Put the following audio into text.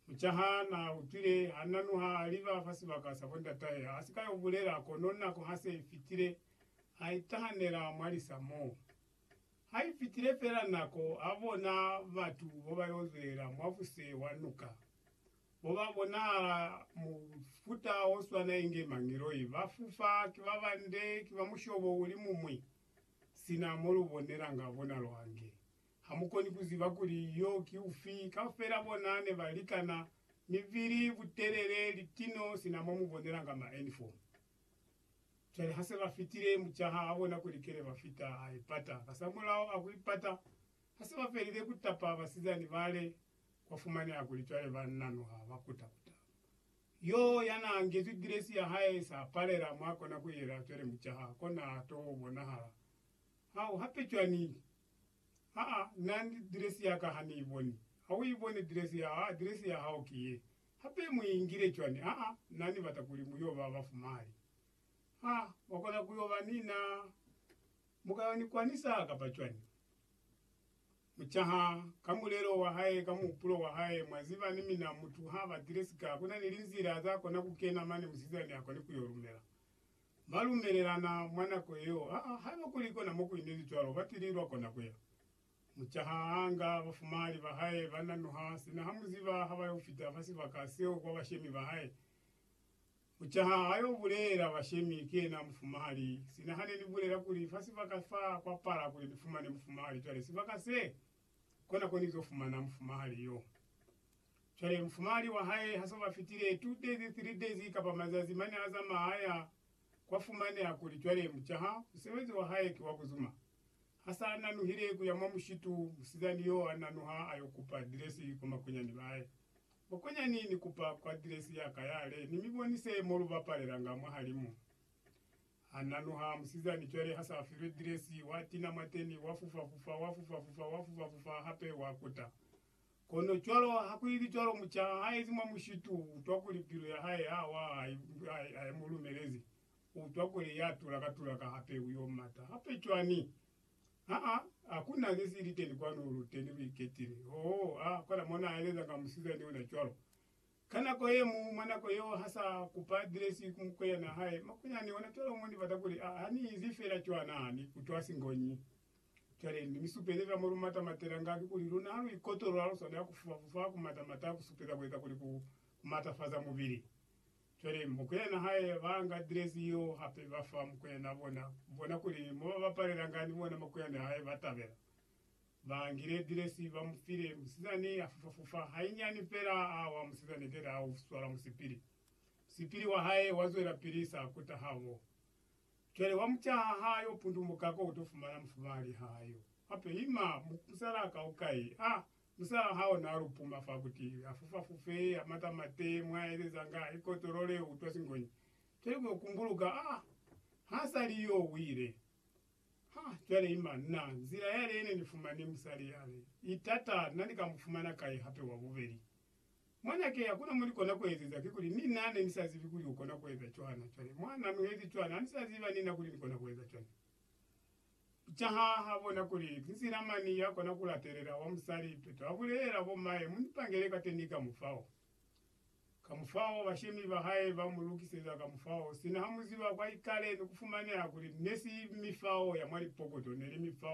Mucaha na utwile ha na nuha a liba fa sibaka sa bo ndatahe, a si ka yo bulela, kono nako ha se i fitile, a itahanela mwa lisa mo. Ha i fitile fela nako, a bona batu bo ba yo zwelela mwa fuse wa nuka, bo ba bonahala mufuta o swana inge mangiloi, ba fufa, ki ba bande, ki ba mushobo uli mumwi, sina mo lu bonelanga bonalo ange. Hamukoni kuziba kuli yo ki ufi. Kaufela bona nebalikana, mibili, butelele, litino, sina momubonelanga ma enifomu. Cwale hase bafitile, mucaha abona kuli kene bafita, aipata. Kasamulaho akuipata, hase bafelile kutapa basizani bale, kwafumaneha kuli cwale banna noha bakuta-kuta. Yo yanaangezwi dresi yahae sapalela mwakona kuyela, cwale mucaha kona to bonahala. Hau, hape cwani? Aa, na ni address ya ka ha ni i boni. Ha u i boni address ya hao, address ya hao ki ye. Hape mu i ingile cwani? Aa, na ni bata kuli mu yo ba ba fumali. Aa, mwa kona ku yo ba ni na. Mu ka yo ni kwanisa kapa cwani? Mu caha ka mulelo wa hae, ka muhupulo wa hae. Mwa ziba, ni mina mutu ha ba address ka, ku na ni linzila za kona ku kena mane musizani a koni ku yo lumela. Ba lumelelana mwa nako yeo, ha, haiba kuli kona mo ku inezi cwalo, ba tili lwa kona ku ya. Muca ha a nga bafumahali ba hae, ba nanuha, sina ha mu ziba ha ba yo fita fa sibaka seo kwa bashemi ba hae. Muca ha a yo bulela bashemi, Ki yena mufumahali, sina ha ne ni bulela kuli fa sibaka fa kwa pala kuli ni fumane mufumahali, cwale sibaka se kona ko ni zo fumana mufumahali yo. Cwale mufumahali wa hae ha so ba fitile two days, three days, kapa mazazi mane a zamaha a ya, kwa fumaneha kuli cwale mucaha musebezi wa hae ki wa ku zuma. Ha sa nanuhile ku ya mwa mushitu, musizani yo a nanuha a yo kupa adiresi kwa makonyani ba hae. Makonyani, ni kupa kwa adiresi ya ka yale, ni mi bonise mo lu bapalelanga mwahali mo. Ha na nuha musizani cwale ha sa filwe diresi, wa tina mwateni, wa fufa-fufa, wa fufa-fufa, wa fufa-fufa hape, wa kuta. Kono cwalo ha ku ibi cwalo, muca ha ezi mwa mushitu, u utwa kuli pilu ya hae ha wa, ha i mu lumelezi. U utwa kuli ya tulaka-tulaka hape, u yo mata hape cwani? Ha-a, ha ku na ze si liteni kwanu, lu teni lu iketile. Oh, a kola mo na elezanga musizani ona cwalo. Ka nako ye mu, mwa nako yeo, ha sa kupa adiresi ku mukweyana hae, makunyani ona cwalo mo ni bata kuli, a, ha ni izi fela cwana, ni kutwa singonyi. Cwale, ni mi supelela mo lu mata matela nga, kikuli luna ha lu ikotolwa, lu swanela ku fufa-fufa, ku mata-mata, ku supeza ku eza kuli ku, ku matafaza mubili. Cwale, mukweyana hae ba nga adiresi yeo hape, ba fa mukweyana bona, bona kuli mo ba bapalela nga, ni bona makunyani hae ba tabela. Ba ngile dilesi ba mu file. Musizani a fufa fufa hainyani fela a wa. Musizani keta a u swala musipili. Musipili wa hae wa zwela pili sa kuta ha wo. Cwale wa mu caha ha yo pundumuka ko u to fumana mufumali ha yo. Hape ima musala ka u kai. A, musala ha ona a lupuma fa kuti a fufa fufe, a mata mate, mwa elezanga, a ikotolole, u utwa singonyi. Cwale mwa kumbuluka, a, ha sa li yo wile. Ha, cwale ima. Na, nzila yale yene ni fumani musali yale, i tata, na ni ka mu fumana kai hape wa bubeli? Mwanake, hakuna mo ni kona ku ezeza, kikuli, ni na ne ni sa zibi kuli u kona ku eza cwana. Cwale, mwa, na nuhezi cwana, ha ni sa ziba ni na kuli ni kona ku eza cwana. Caha ha bona kuli ki nzila mani ya kona ku latelela, wa musali, peto a bulelela, Bo mae, mu ni pangele kateni ka mufao. Kamufao bashemi ba hae ba mu lukiseza kamufao sina ha mu ziba kwa ikale ni ku fumaneha kuli ne si mifao ya mwa lipokoto, ne li mifao ya